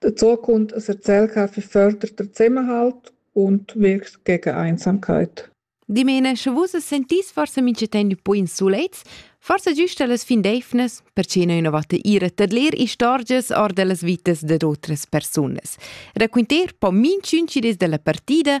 Dazucund es el ch'ha fich förder da Zusammenhalt und wirkt gegen Einsamkeit. Dimena, sche vus as sentis forsa minchatant ün po in sulets, forsa güsta las fin d'eivnas, perche no innovatta ir a tadler istorgias or da las vitas dad otras persunas. Raquinter po minchün chi dess da la partida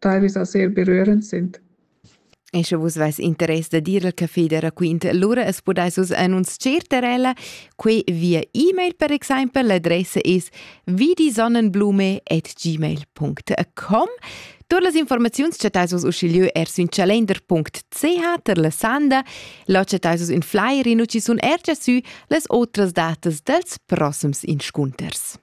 teilvis a ser berührend sind. E sche vus veis interess da dir al café da raquint, lura es podais vus annunzier ter ella. Quei via e-mail per exempel, l'adressa es vidisonnenblume@gmail.com. Tur las informaziuns chattais vus uschigliö er sün calender.ch ter la sanda. Là chattais vus ün flyer in uchi sun er già sü las otras datas dels prossems inscunters.